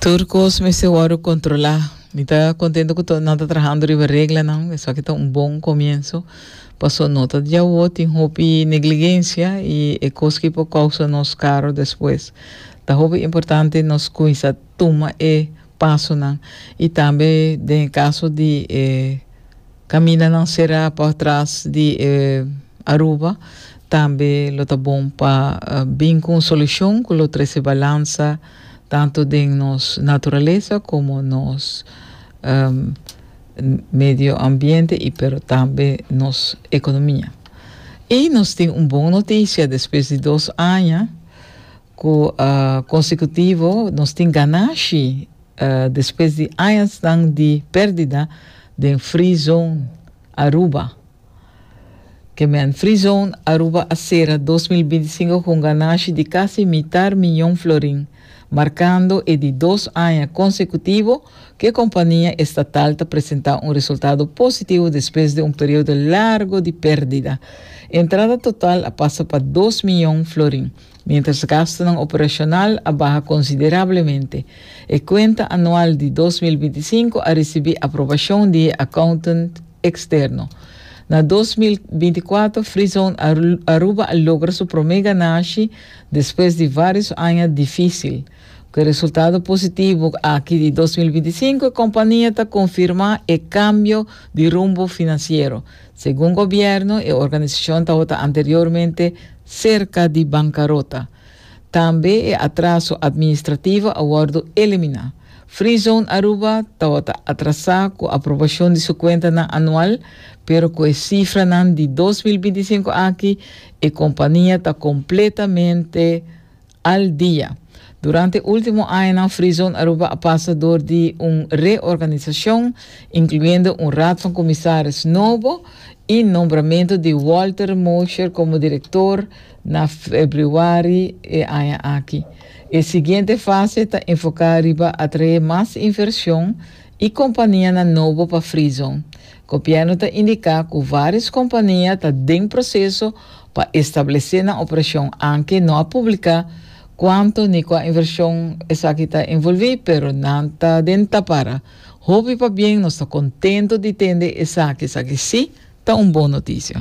Tur kos mester wòrdu kontrolá. Mi ta kontento ku to, nan ta trahando riba reglanan, esaki ta un bon komienso. Pasó no ta diawo, tin hopi negligensia i e kos ki por kousa nos karo despues. Ta hopi importante nos kuminsá tuma e pasonan i tambe den e kaso di e Camina nan será por tras di e Aruba tambe lo ta bon pa bin cu un solucion cu lo trece balansa tanto den nos naturaleza como nos medio ambiente y pero tambe nos economia. Y nos tin un bon noticia despues di dos aña cu consecutivo nos tin ganashi. Despues di añasnan di perdida den Free Zone Aruba. Kemen Free Zone Aruba a sera dos mil binti sinku ku un ganashi di kasi mitar miñon florin, markando e di dos aña konsekutivo ku e kompania estatal ta presentá un resultado positivo despues di un periodo largo di perdida. Entrada total a pasa pa dos miñon florin. Mientras gastunan operacional a baha considerablemente, e cuenta anual di dos mil binti sinku a ricibi aprobacion di e accountant externo. Na dos mil binti kuater, Freezone Aruba a logra su prome ganashi despues di varios aña dificil. Cu e resultado positivo aki di dos mil binti sinku e compania ta confirma e cambio di rumbo financiero, Segun gobierno e organisacion tabata anteriormente cerca di bancarota. Tambe e atraso administrativo a wordo elimina. Free Zone Aruba tabata atrasa cu aprobacion di su cuentanan anual, pero cu e cifranan di dos mil binti i sinku aki e compania ta completamente Al dia. Durante ultimo añanan Frizon Aruba a pasa dor di un reorganisacion, incluyendo un raad van comisaris nobo y nombramento di Walter Mosher como director na februari e aña aki. E siguiente fase ta enfoca riba atrae mas inversion y companianan nobo pa Frizon. Gobierno ta indica cu varios compania ta den proceso Pa establesé nan operashon anke no a publiká kuantu ni kua invershon esaki ta envolví pero nan ta den tapara. Hopi pabien nos ta kontentu di tende esaki, esaki sí ta un bon noticia.